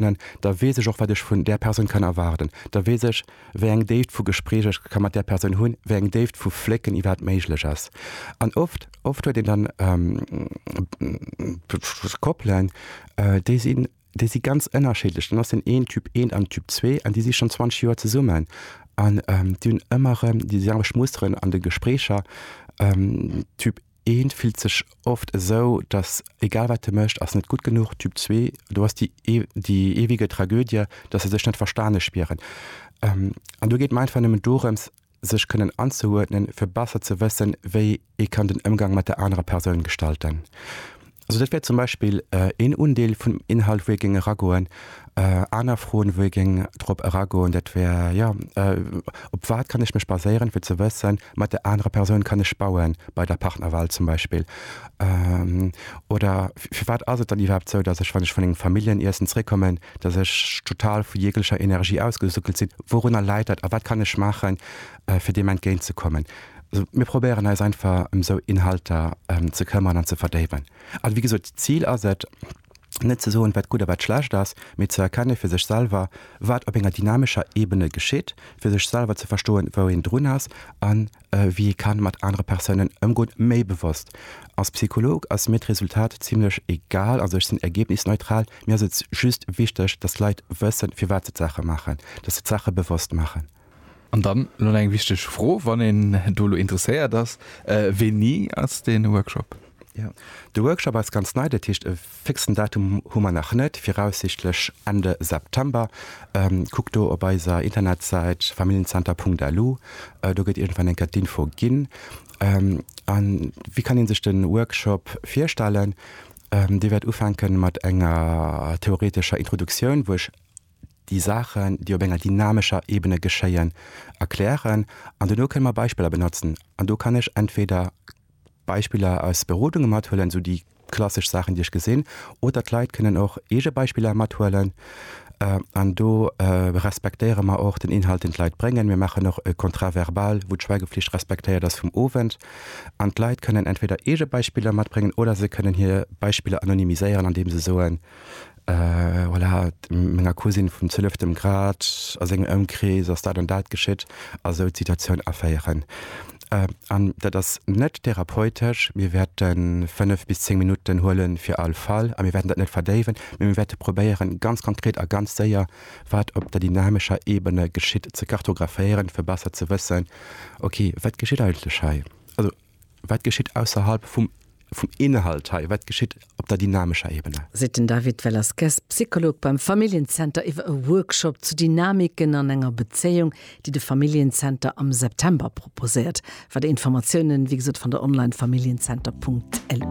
begéinen, da weess ech och wat ech vun där Persoun kann erwaarden, da weess ech wéi eng Déift vu Gespréich ech ka mat där Persoun hunn, wéi eng Déift vu Flécken iwwerhaapt méiglech ass. An oft, oft huet een dann Koppelen, déi sinn, déi si ganz ënnerschiddlech. Dann ass den een Typ eent an den Typ zwee an déi si schonn 20 Joer zesummen an déi hunn ëmmer erëm déi selwecht Musteren an de Gespréicher. Typ. Eent fillt sech oft esou, dass egal wat e mécht, ass net gutt genuch. Typ zwee, do ass déi déi eewege Tragödie, dass se sech net verstane spieren. An do geet mer einfach nëmmen dorëms, sech kënnen anzeuerdnen, fir besser ze wëssen, wéi ee kann den Ëmgang mat der anerer Persoun gestalten. Also dat wär zum Beispill een Undeel vun dem Inhalt, wou ee géing eragoen. Aner Froen, wou ee géing drop eragoen, dat wär, jo, op wat kann ech mech baséieren, fir ze wëssen, mat där anerer Persoun kann ech bauen, bei der Partnerwahl zum Beispill. Oder firwat ass et dann iwwerhaapt esou, datt ech, wann ech vun engem Familljeniessen zeréckkommen, datt ech total vu jeeglecher Energie ausgesuckelt sinn? Wourunner läit dat a wat kann ech maachen, fir deem entgéint ze kommen? Mir probéieren eis einfach ëm esou Inhalter ze këmmern an ze verdéiwen. A wéi gesot, d'Zil ass et, net ze soen, wat gutt a wat schlecht ass, mee ze erkenne fir sech selwer, wat op enger dynamescher Ebene geschitt, fir sech selwer ze verstoen, wou een drun ass a wéi ee ka mat anere Persounen ëmgoen, méi bewosst. Als Psycholog ass mir d'Resultat zimlech egal, also ech sinn ergebnisneutral. Mir ass et just wichteg, dass d'Leit wëssen, firwat se d'Saache maachen, dass se d'Saache bewosst maachen. An dann elo eng wichteg Fro, wann een do elo interesséiert ass, Wéini ass dee Workshop? Jo, de Workshop ass ganz nei, dat heescht, e fixen Datum hu mer nach net, viraussichtlech Ende September. Kuckt do op eiser Internetsäit familienzenter.lu, do gëtt iergendwann eng Kéier d'Info ginn. A wéi kann ee sech de Workshop virstellen? Dee wäert ufänke mat enger theoretescher Introduktioun, wou ech. déi Saachen, déi op enger dynamescher Ebene geschéien, erklären an dono kënne mer Beispiller benotzen. An do kann ech entweder Beispiller aus Berodunge mathuelen, esou déi klassesch Saachen, déi ech gesinn, oder d'Leit kënnen och eege Beispiller mathuelen. An do respektéiere mer och den Inhalt, deen d'Leit bréngen. Mir maachen och e Contrat verbal, wou d'Schweigeflicht respektéiert ass vum Owend. An d'Leit kënnen entweder eege Beispiller matbréngen oder se kënnen hir Beispiller anonymiséieren, andeem se soen, Voilà, menger Cousine vum zwieleftem Grad, a sengem Ëmkrees ass dat an dat geschitt, a sou d'Situatioun aféieren. An dat ass net therapeutesch. Mir wäerte fënnef bis zéng Minutten huele fir all Fall, a mir wäerten dat net verdéiwen, mee mir wäerte probéieren, ganz konkret a ganz séier, wat op der dynamescher Ebene geschitt, ze kartographéieren, fir besser ze wëssen, ok, wat geschitt eigentlech hei? Wat geschitt ausserhalb vum vum Inhalt hei? Wat geschitt op der dynamescher Ebene? Seet den David Velasquez, Psycholog beim Familljen-Zenter iwwer e Workshop zu Dynamiken an enger Bezéiung, déi de Familljen-Zenter am September proposéiert. Weider Informatiounen, wéi gesot, fannt der online, familljenzenterpunkt lu.